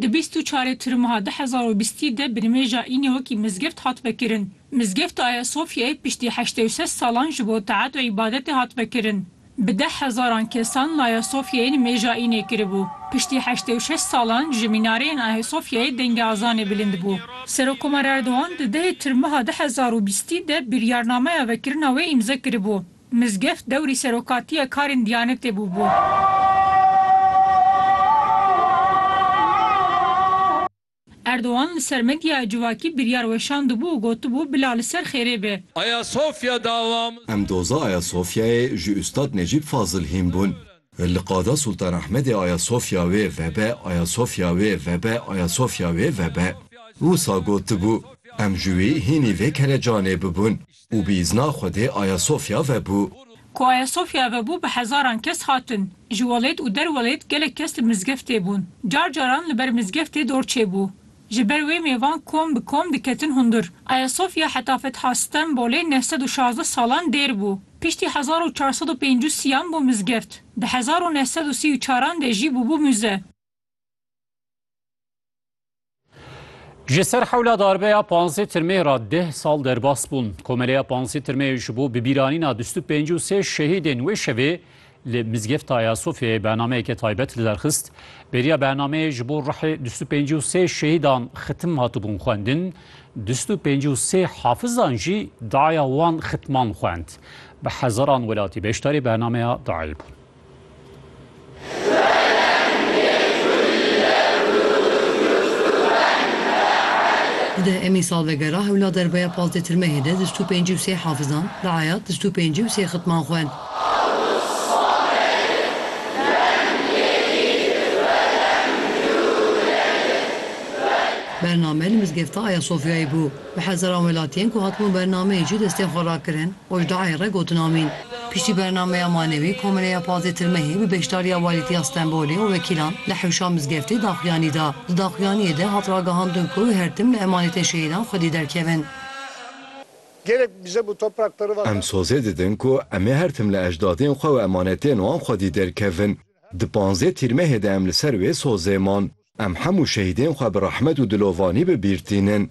Di bîst û çarê Tirmuha du hezar û bîstî de binimêja Înê wekî mizgeft hat vekirin. Mizgefta Ayasofyayê piştî heştê û sed salan ji bo teat û îbadetê hat vekirin. Bi deh hezaran kesan li Ayasofyayê nimêja Înê kiribû. Piştî heştê û şeş salan ji mînareyên Ayasofyayê dengê azanê bilind bû. Serokkomar Erdogan di dehê Tirmuha du hezar û bîstî de biryarnameya vekirina wê îmze kiribû. Mizgift dewrî serokatiya karên Diyanetê bûbû. Erdogan li ser medyaya civakî biryar weşandibû û gotibû bila li ser xêrê be. Ayasofya davamız. Em doza Ayasofyayê ji Ustad Necîb Fazil hîn bûn. Li Qada Sultan Ahmedê Ayasofya wê vebe, Ayasofya wê vebe, Ayasofya wê vebe. Wisa gotibû, Em ji wî hînî vê kelecanê bibûn. Û bi îzna Xwedê Ayasofya vebû. Ku Ayasofya vebû bi hezaran kes hatin. Ji welêt û derwelêt gelek kes li mizgeftê bûn. Car caran li ber mizgeftê dor çêbû. Ji ber wê mêvan kom bi kom diketin hundir. Ayasofya heta Fetha Stenbolê neh sed û şazdeh salan dêr bû. Piştî hezar û çar sed û pênc û sî an bû mizgeft. Di hezar û neh sed û sî û çaran de jî bûbû mûze. Ji ser hewla darbeya panzê tirmê re deh sal derbas bûn. Komeleya panzê tirmê ji bo bibîranîna bîst û pêncî û sê şehîdên wê şevê li Mizgefta Ayasofyayê bernameyeke taybet li der xist. Bêriya bernameyê ji bo rihê bîst û pêncî û sê şehîdan xitim hatibûn xwendin. Bîst û pêncî û sê hafizan jî daya wan xitman xwend. Bi hezaran welatî beşdarî bernameya dayê bûn. Di emî salvegera hewla derbeya pazdeh tirmehê de dijt û pêncî û sê hafizan, reayat dijt û pêncî û sê xitman xwend. Bername li mizgefta Ayasofyayê bû. Bi hezaran welatiyên ku hatibûn bernameyê jî destên xwe rakirin, Ojdayê re gotin amîn. Piştî bernameya Manewî, Komeleya Pazêtir Mehê bi beşdariya Walîtiya Stenbolê û wekîlan li hewşa mizgeftê daxuyanî da. Di daxuyaniyê de hat ragihandin ku her tim li emanetên şehîdan xwedî derkevin. Gerek bize bu toprak pırr vatan. Em sozê didin ku em ê her tim li ejdadên xwe û emanetên wan xwedî derkevin. Di panzdeh tîrmehê de em li ser wê sozê man. Em hemû şehîdên xwe bi rehmet û dilovanî bi bîr tînin.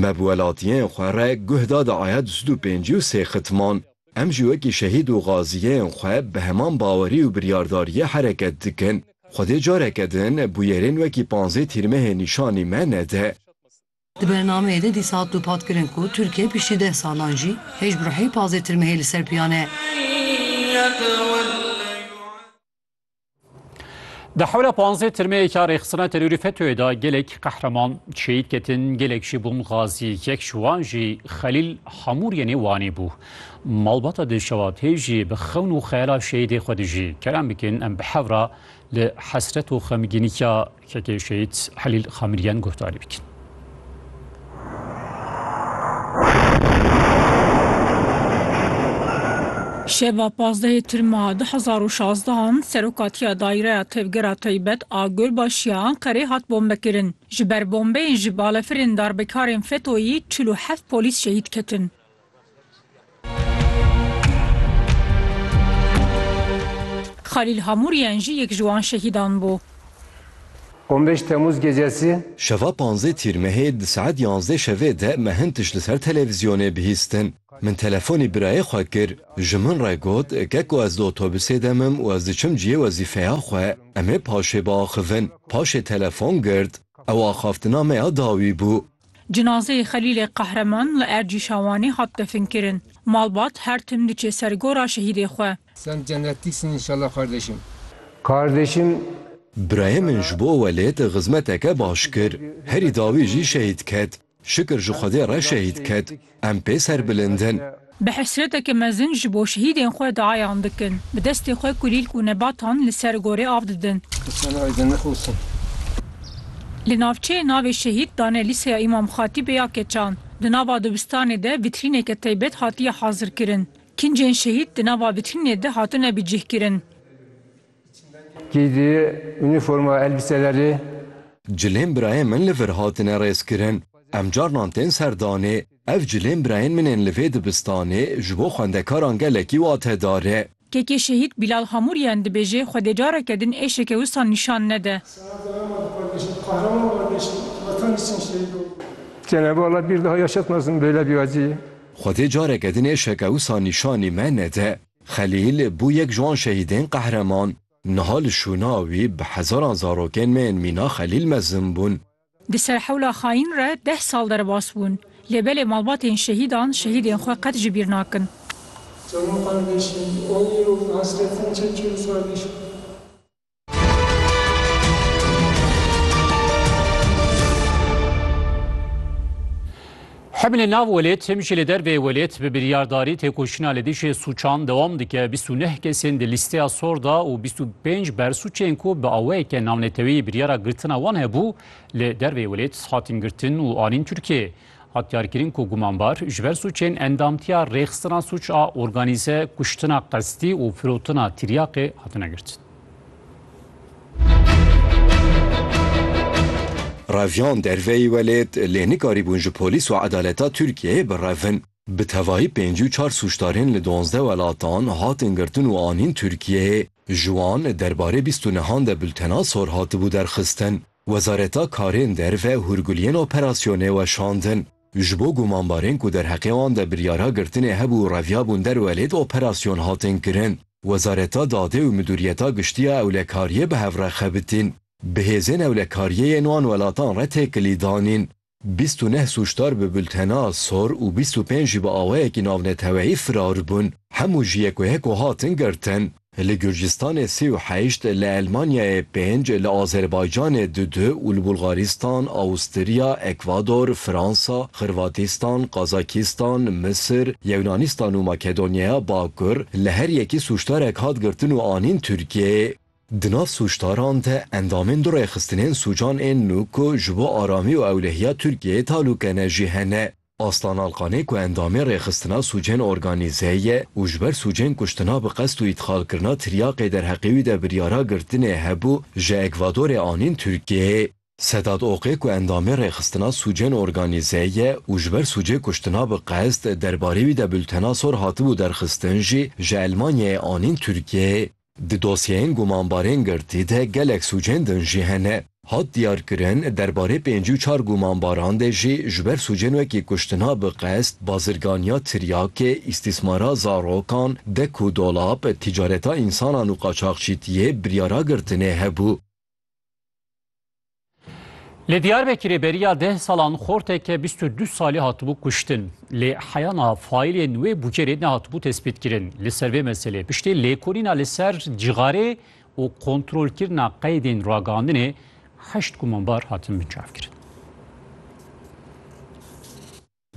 Me bi welatiyên xwe re guh da di aya du sed û pêncî û sê xitman. Em jî wekî şehîd û gaziyên xwe bi heman bawerî û biryardariyê hereket dikin. Xwedê careke din bûyerên wekî panzdeh tîrmehê nîşanî me nede. Di bernameyê de dîsa hat dûpatkirin ku Tirkiye piştî deh salan jî hêj bi ruhê pazê tirmehê li ser piyan e. Di hewla panzdeh tirmeyêka rêxistina terorî FETÖ'yê de gelek qehreman şehîd ketin, gelek jî bûn xazî. Yek ji wan jî Xelîl Hamûr yê nê Wanê bû. Malbata Dilşewat hê jî bi xewn û xeyala şehîdê xwe dijî. Kerem bikin em bi hev re li hesret û xemgînî ya Çekê Şehîd Helîl Xamilîyan guhdarî bikin. Şeva pazdehê Tirma du hezar û şazdeh an Serokatiya Daîreya Tevgera Taybet a Gurbaşiya Enqerê hat bombekirin. Ji ber bombeyên ji balefirên darbekarên FETO'yî çil û heft polîs şehîd ketin. Xalîl Hamûrîyen jî yek ji wan şehîdan bû. On bêş Temmûz gecesî. Şeva panzdeh Tîrmehê di saet yanzdeh şevê de me hin tişt li ser televîzyonê bihîstin. Min telefonî birayê xwe kir. Ji min re got ke ku ez di otobusê de mim û ez diçim cihê wezîfeya xwe. Em ê paşê biaxivin. Paşê telefon girt. Ew axaftina me ya dawî bû. Cinazeyê Xelîlê Qehreman li Ercî Şawanê hat definkirin. Malbat her tim diçê ser gora şehîdê xwe. Sen cennetik sin înşallah kardeşim. Kardeşim. Birayê min ji bo welêt xizmeteke baş kir. Herî dawî jî şehîd ket. Şikir ji Xwedê re şehîd ket. Em pê serbilind in. Bi hesreteke mezin ji bo şehîdên xwe diayan dikin. Bi destê xwe kulîlk û nebatan li ser gorê av didin. Li navçeyê navê şehîd dane Lîseya Îmam Xatîbê ya Keçan. Di nava dibistanê de vîtrîneke taybet hatiye hazirkirin. Kincên şehîd di nava vîtrînê de hatine bicihkirin. Kî di unîforma elbîse de rê? Cilên birayên min li vir hatine rêzkirin. Em carinan tên serdanê. Ev cilên birayên min ên li vê dibistanê ji bo xwendekaran gelekî watedar e. Kekê Şehîd Bîlal Hamûrîyan dibêje Xwedê careke din êşeke wisa nîşan nede. Cenab-ı Allah bir daha yaşatmasın böyle bir acıyı. Xwedê careke din êşeke wisa nîşanî me nede. Xelîl bû yek ji wan şehîdên qehreman. Niha li şûna wî bi hezaran zarokên me yên mîna Xelîl mezin bûn. Di ser hewla xayîn re deh sal derbas bûn. Lê belê malbatên şehîdan şehîdên xwe qet ji bîr nakin. Canım kardeşim, on yıl hasretin çekiyoruz kardeşim. Hemî li nav welêt him jî li dervê welêt bi biryardarî têkoşîna li dijî sûçan dewam dike. Bîst û neh kesên di lîsteya sor da û bîst û pênc bersûçên ku bi awayeke navnetewî biryara girtina wan hebû li dervê welêt hatin girtin û anîn Tirkiyeyê. Hat diyarkirin ku gumanbar ji ber sûcên endamtiya rêxistina sûc a organîze, kuştina qestî û firotina tiryaqê hatine girtin. Reviyan derveyî welêt lê nikarîbûn ji polîs û edaleta Tirkiyeyê birevin. Bi tevahî pêncî û çar sûcdarên li duwazdeh welatan hatin girtin û anîn Tirkiyeyê. Ji wan derbarê bîst û nehan de bultena sor hatibû derxistin. Wezareta Karên Derve hûrguliyên operasyonê weşandin. Ji bo gumanbarên ku derheqê wan de biryara girtinê hebû û reviyabûn derwe lê di operasyon hatin kirin, Wezareta Dadê û Midûriyeta Giştî ya Ewlekariyê bi hev re xebitîn. Bi hêzên ewlekariyê yên wan welatan re têkilî danîn. Bîst û neh sûcdar bi bultena sor û bîst û pênc jî bi awayekî navneteweyî firar bûn. Hemû ji yek û yek û hatin girtin. Li Gurcistanê sê û heşt, li Elmanyayê pênc, li Azerbaycanê du du û li Bulgaristan, Awustirya, Ekvador, Fransa, Xirvatîstan, Qazakîstan, Misir, Yewnanistan û Makedonyaya Bakur li her yekî sûcdarek hat girtin û anîn Tirkiyeyê. Di nav sûcdaran de endamên du rêxistinên sûcan ên nû ku ji bo aramî û ewlehiya Tirkiyeyê talûke ne jî hene. Aslan Alkanê ku endamê rêxistina sûcên organîze ye û ji ber sûcên kuştina bi qest û îtxalkirina tiryaqê derheqê wî de biryara girtinê hebû, ji Ekvadorê anîn Tirkiyeyê. Sedat Oqê ku endamê rêxistina sûcên organîze ye û ji ber sûcê kuştina bi qest derbarê wî de bultena sor hatibû derxistin jî ji Elmanyayê anîn Tirkiyeyê. Di dosyeyên gumanbarên girtî de gelek sûcên din jî hene. Hat diyarkirin, derbarê pêncî û çar gumanbaran de jî ji ber sûcên wekî kuştina bi qest, bazirganiya tiryakê, îstîsmara zarokan, dek û dolap, tîcareta însanan û qaçaxçîtiyê biryara girtinê hebû. Li Diyarbekirê beriya deh salan xorteke bîst û du salî hatibû kuştin. Lê heyana faîlên wê Bucerê nehatibû tespîtkirin. Li ser vê meselê piştî lêkolîna li ser cixarê û kontrolkirina qeydên ragihandinê heşt gumanbar hatin binçavkirin.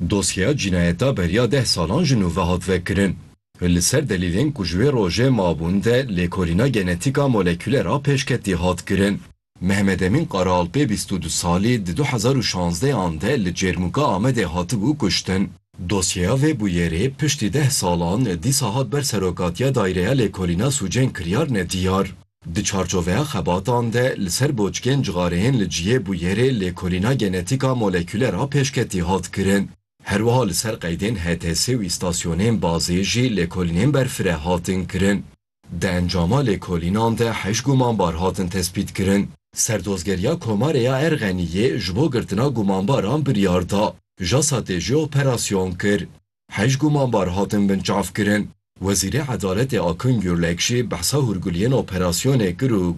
Dosyeya cînayeta beriya deh salan ji nû ve hat vekirin. Li ser delîlên ku ji wê rojê mabûn de lêkolîna genetîka molekûlera pêşketî hat kirin. Mehmet Emîn Qaraalpê bîst û du salî di du hezar û şazdeh an de li Cêrmûka Amedê hatibû kuştin. Dosyeya vê bûyerê piştî deh salan dîsa hat ber Serokatiya Daireya Lêkolîna Sûcên Kiryar ne diyar. Di çarçoveya xebatan de li ser boçkên cixareyên li cihê bûyerê lêkolîna genetîka molekûler a pêşketî hat kirin. Her wiha li ser qeydên HTS û îstasyonên bazê jî lêkolînên berfire hatin kirin. Di encama lêkolînan de heşt gumanbar hatin tespîtkirin. Serdozgeriya Komarê ya Erxeniyê ji bo girtina gumanbaran biryar da. JASAT'ê jî operasyon kir. Heyş gumanbar hatin binçavkirin. Wezîrê Edaletê Akın Gürlek jî behsa hûrguliyên operasyonê kir û